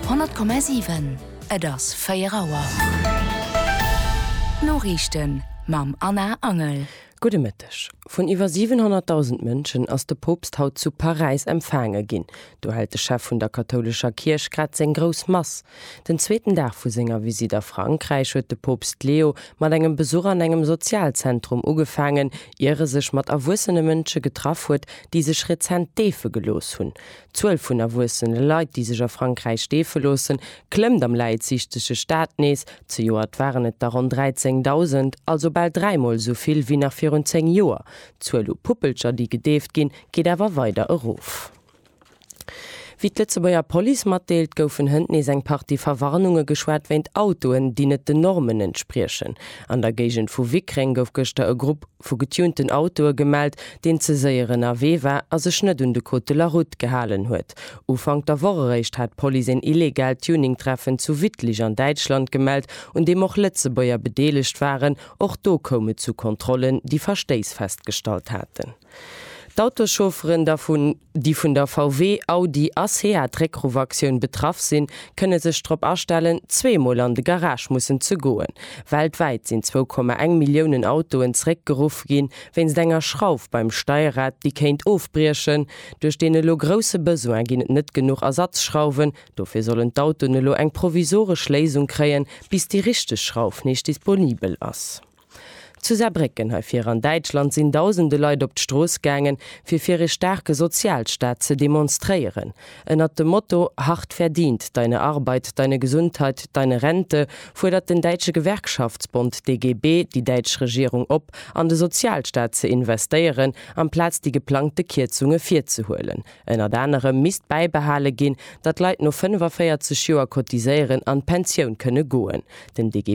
100,7, Et ass 4 Auer. D'Noriichten mam Anna Angel. Gudde Mëtteg. Vun iwwer 700.000 Mënschen ass de Poopst haut zu Paräis empfaange ginn. Do hält de Chef vun der kathoulescher Kierch grad seng grouss Mass. Den zweeten Dag vu senger Visitt a Frankräich huet de Poopst Leo mat engem Besuch an engem Sozialzentrum ugefaangen, ier e sech mat erwuessene Mënsche getraff huet, déi sech rezent deefe gelooss hunn. D'Zuel vun erwuessene Leit, déi sech a Frankräich deefe loossen, klëmmt am läitsiichtege Staat nees. Zejoert waren et der ronn 13.000, also bal dräimol esou vill wéi nach virun zéng Joer. D'Zuel u Puppelcher, déi gedeeft ginn, geet awer weider erof. Wéi d'Lëtzebuerger Police matdeelt, goufen hënt nees eng Partie Verwarnunge geschwat wéint Autoen, déi net den Normen entspriechen. An der Géigend vu Wickreng gouf gëschter e Grupp. vu getunten Autoe gemellt, deen ze séier ënnerwee war a sech net un de Code de la Route gehalen huet. Ufank der Woch eréischt hat d'Police een illegaalt Tuning-Treffen zu Wittlich an Däitschland gemellt, un deem och Lëtzebuerger bedeelegt waren. Och do koum et zu Kontrollen, déi Verstéiss festgestallt haten. D'Autoschaufferen da vun. déi vun der VW, Audi a Seat Réckruff-Aktioun betraff sinn, kënne sech drop astellen, zweemol an de Garage mussen ze goen. Weltwäit sinn zwou Komma eng Milliounen Autoen zeréckgeruff ginn, wéinst enger Schrauf beim Steierrad, déi kéint ofbriechen. Duerch deen elo grousse Besoin ginn et net genuch Ersatzschrauwen. Dofir sollen d'Autoen elo eng provisoresch Léisung kréien, bis déi richteg Schrauf nees disponibel ass. Zu Saarbrécken, hei vir an Däitschland, sinn dausende Leit op d'Strooss gaangen, fir fir ee staarke Sozialstaat ze demonstréieren. Ënnert dem Motto Hart verdient, deine Arbeit, deine Gesundheit, deine Rente fuerdert den däitsche Gewerkschaftsbond DGB déi däitsch Regierung op, an de Sozialstaat ze investéieren, amplaz déi geplangte Kierzunge virzehuelen. Ënnert anerem misst bäibehale ginn, datt Leit no 45 Joer Cotiséieren an d'Pensioun kënne goen. Den DGB.